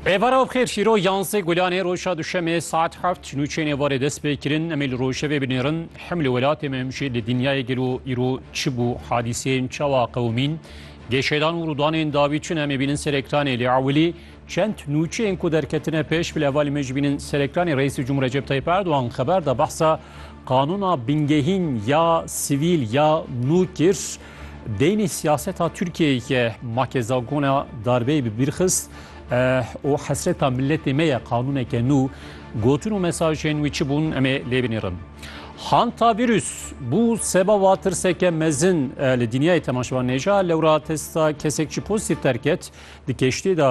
Êvara bi xêr şîro yansê gulanê roja duşemê saet heft ji nûçênê varê dest pê kirin em ê li rojevê binêrin hem li welatê me hem jî li dinyayê gelo îro çi bû hadîseyên çawa qewimîn gêşedan û rûdanên dawî çin em ê bînin ser ekranê lê ewilî çend nûçeyên ku derketine pêş bi levalê me jî bînin ser ekranê Reîsê Cumhur Recep Tayyip Erdogan xeber da behsa qanûna bingehîn ya sivîl ya nû kir Deynê siyaseta Tirkiyeyê ke ma kezagona darbeyê bi bîr xist û hesreta miletê me ye qanûneke nû, gotin û mesajên wî çi bûn em ê lê binêrin. Hantavîrus bû sebaba tirseke mezin li dinyayê temaşevan nêja, lewra testa kesek çi pozîtîf derket, Di keştê de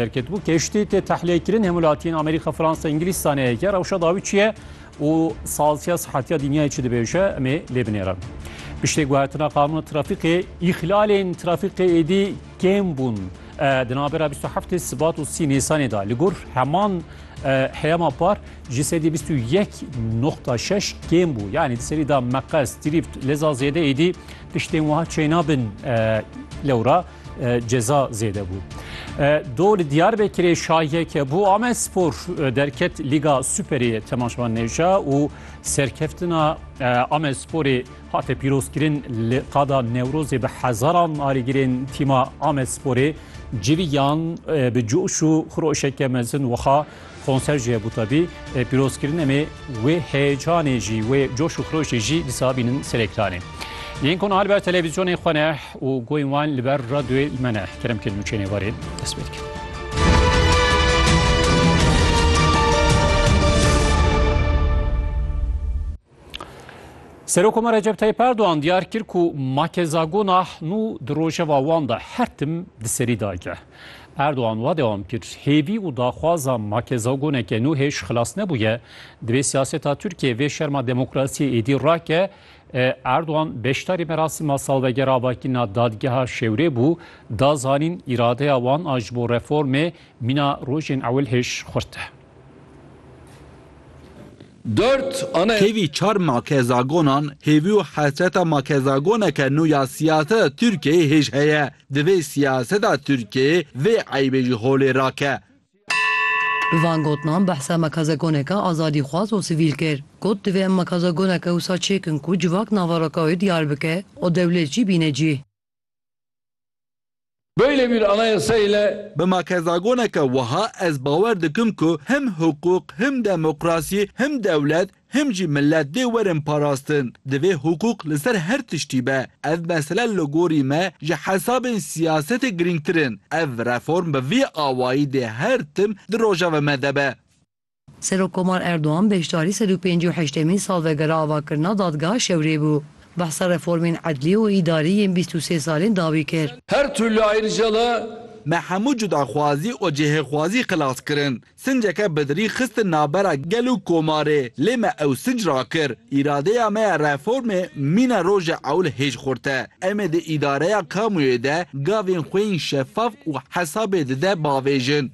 derketibû. Keştê tê tehliyekirine hemwelatiyên Amerîka, Fransa, Îngilîz saneyeke rewşa dawî çi ye û salsiya sihetiya dinyayê çi dibêje em ê lê binêrin. Piştê guhertina qanûna trafîkê, îhlalên trafîkê êdî kêm bûn. Di navbera 27 Sibat û 30 Nîsanê de li gor heman heyama par ji sedî 21.6 kêm bû. Yanî di serî de meqes, dirîft, leza zêde êdî tiştên wiha çêna bin lewra. ceza zêde bû. Do li Diyarbekirê şahiyeke bû Amed Spor derket Lîga Superê temaşvan nêja û serkeftina Amed Sporê hate pîrozkirin li qada Newrozê bi hezaran alîgirên tîma Amed Sporê civîyan bi coş û xiroşeke mezin wiha Konser jî hebû tevî, pîrozkirin em ê wê heyecanê jî, wê coş û xirojê jî dîsa bînin ser ekranê. Yên ku niha li ber televîzyonê xwe ne û goyên wan li ber radyoyê li me ne, kerem kirin û çênê warê dest pê dikin. Serokoma Recep Tayyip Erdoğan diyar kir ku make zagona nû di rojeva wan de her tim di serî dayke. Erdoğan wa dewam kir, hêvî û daxwaza make zagoneke nû hêj xilas nebûye, divê siyaseta Tirkiyeyê vê şerma demokrasiyê êdî rake, Erdoğan beşdarî merasîma salvegera avakirina dadgeha Şewrê bû, da zanîn îradeya wan a ji bo reformê mîna rojên ewil hêj xurt e. Kevî çar makezagonan hêvî û hesreta makezagoneke nû ya siyaseta Tirkiyeyê hêj heye. Divê siyaseta Tirkiyeyê vê eybê ji holê rake. Bi van gotinan behsa makezagoneke azadîxwaz û sivîl kir. Got, Divê em makezagoneke wisa çêkin ku civak nava Rokawê diyar bike û dewlêt jî bîne cîh. Böyle bir anayasa ile. Bi makezagoneke wiha ez bawer dikim ku him hiqûq, him demokrasî, him dewlet, him jî milet dê werin parastin. Divê hiqûq li ser her tiştî be. Ev mesele li gorî me ji hesabên siyasetê girîngtir in. Ev reform bi vî awayî dê her tim di rojeva me de be. Serokkomar Erdogan beşdarî sed û pêncî û heştemîn salvegera avakirina dadgeha Şewrê bû. Behsa reformên edlî û îdarî yên bîst û sê salên dawî kir. Her türlü ayrıcalığı. Me hemû cudaxwazî û cihêxwazî xilas kirin. Sinceke bidirî xistin navbera gel û komarê, lê me ew sinc rakir. Îradeya me ya reformê mîna rojê ewil hêj xurt e. Em ê di îdareya kamuyê de gavên xwe yên şefaf û hesabê dide bavêjin.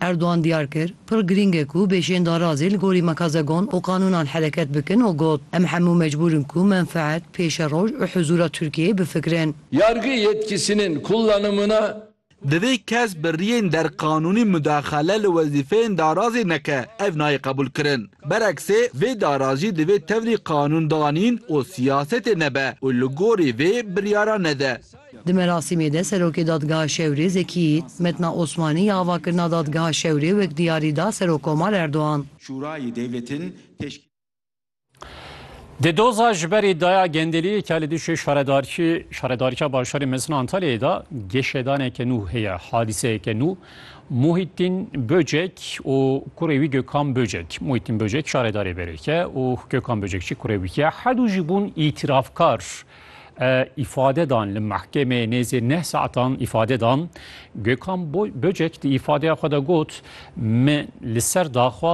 Erdogan diyar kir, pir girîng e ku bêşên darazê li gorî mekazegon û qanûnan hereket bikin û got, Em hemû mecbûr in ku menfeet, pêşeroj û huzûra Tirkiyeyê bifikirin. Yargı yetkisinin kullanımına. Divê kes bi riyên derqanûnî mudaxale li wezîfeyên darazê neke, ev nayê qebûlkirin. Bereksê, vê darazî divê tevrî qanûndanîn û siyasetê nebe û li gorî vê biryaran nede. Di merasîmê de Serokê Dadgeha Şewrê Zekî Yît, Metna Osmanî ya avakirina Dadgeha Şewrê wek diyarî da Serokkomar Erdogan. Şurayê Dewletin teşkîl. Di doza ji berî daya gendeliyê ke li dijî şaredarkî Şaredarîya Bajarê Mezin a Antalyayê da, geşedaneke nû heye, hadîseyeke nû. Muhîtîn Böcek û kurê wî Gökhan Böcek. Muhîtîn Böcek şaredarê Berêk e û Gökhan Böcek jî kurê wî ye. Her dû jî bûn îtîrafkar. îfade dan li mehkemê nêzî neh saetan îfade dan. Gökhan Böcek di îfadeya xwe de got, Min li ser daxwaz